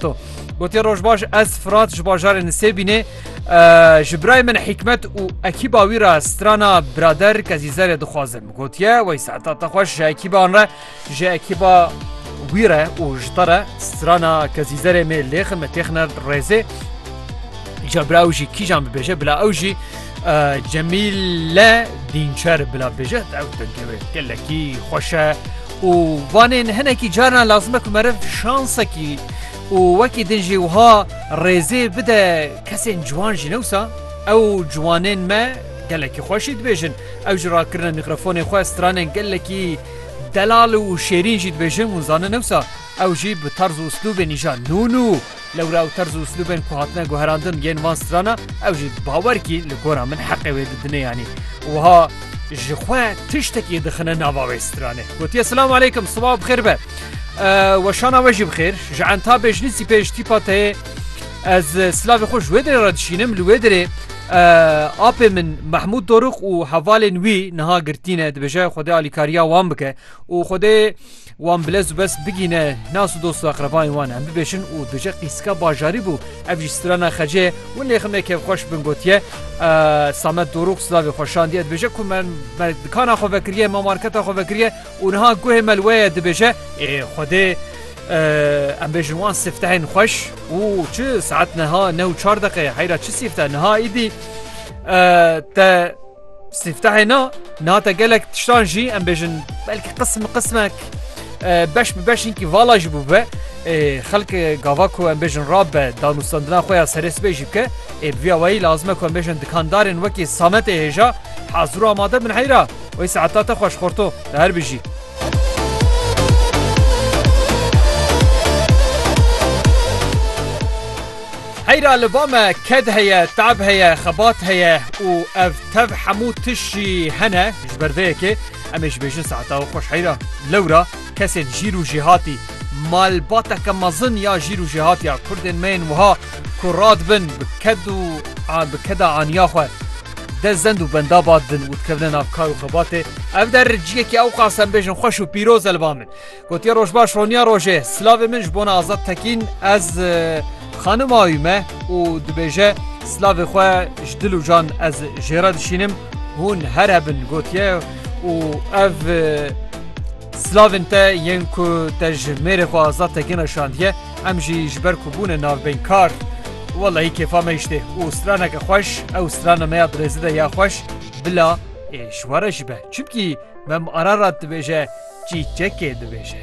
To gotiye roj baş ez Fırat ji bajarê Nisêbînê ji birayê min hikmet û ekîba wî re strana birader kezîzerê dixwazim. Gotiye wey saeta te xweş ji ekîban re ji ekîba wî re û ji te re strana kezîzerê mê lêxin me têxine rêzê. Ca bira ew jî kîjan bibêje bila ew jî Cemîle dînçer bila bêje ew dengê wê gelekî xweşe û vanê hinekî carna lazim e ku meriv şansekî û wekî din jî wiha rêzê bide kesên ciwan jî newsa ew ciwanên me gelekî xweşî dibêjin ew ji rakirina mîkrofonê xwe stranên gelekî delal û şêrîn jî dibêjin hûn zanin newsa ew jî bi tarz û uslûbên îja nû nû Lewra û terz û uslûbên ku hatine guherandin yên van strana ew jî bi bawerkî li gora min heqê wê didine yanî wiha ji xwe tiştekî dixine nava wê stranê. Gotiye silam aleykum siba bixêr be. Weşana we jî bixêr ji enta bêjlîsî pêj tîpa teyê ez silavê xwe ji wê dirê re dişînim li wê dirê apê min Mehmûd Dorux û hevalên wî niha girtîne dibêje Xwedê alîkariya wan bike û Xwedê Wan bi lez û bes bigîne nas û dost û aqrebayên wan em bibêjin û duje qîsika bajarî bû. Ev jî strana xecê ye. Win lê xemê kevxweş bin gotiye, Samet Dorûx silavê xwe şandiye dibêje ku me me dikana xwe vekiriye, me marketa xwe vekiriye û niha guhê me li we ye dibêje, ê xwedê em bêjin wan sîftehên xweş û çi saet niha neh û çar deqe ye heyra çi sîfteh niha îdî te Sîftehê na nate gelek tiştan jî em bêjin belkî qism bi qismek beş bi beş hinkî vala jî bûbe. Xelk gava ku em bêjin rab be danûstandina xwe ya serê sibê jî bike. Ê bi vî awayî lazime ku em bêjin dikandarên wekî sametê hêja hazir û amade bin heyra. Wê saeta te xweş xorto te her bijî. Heyra li ba me ked heye, te'b heye, xebat heye û ev tev hemû tişt jî hene. Ji ber vê yekê em ê ji bêjin saeta we xweş heyra. Lewra kesên jîr û jêhatî, malbateke mezin ya jîr û jêhatî ya kurdên me yên wiha ku radibin bi ked û bi keda aniya xwe dest zend û benda ba didin û dikevine nav kar û xebatê, ev der ciyekî ewqas em bêjin xweş û pîroz e li ba min. Gotiye roj baş roniya rojê. Silavê min ji bona Azad Tekîn ez xanim awî me û dibêje silavê xwe ji dil û can ez jêra dişînim hûn her hebin gotiye û ev Slavên te yên ku te ji mêrê xwe azad te gina şandiye em jî ji ber ku bûne navbeynkar Wellahî kêfa me îştê û straneke xweş ew strana me ya dirêzi de ya xweş bila Ê şware ji be çimkî Mem Ararat dibêje, Çîçekê dibêje.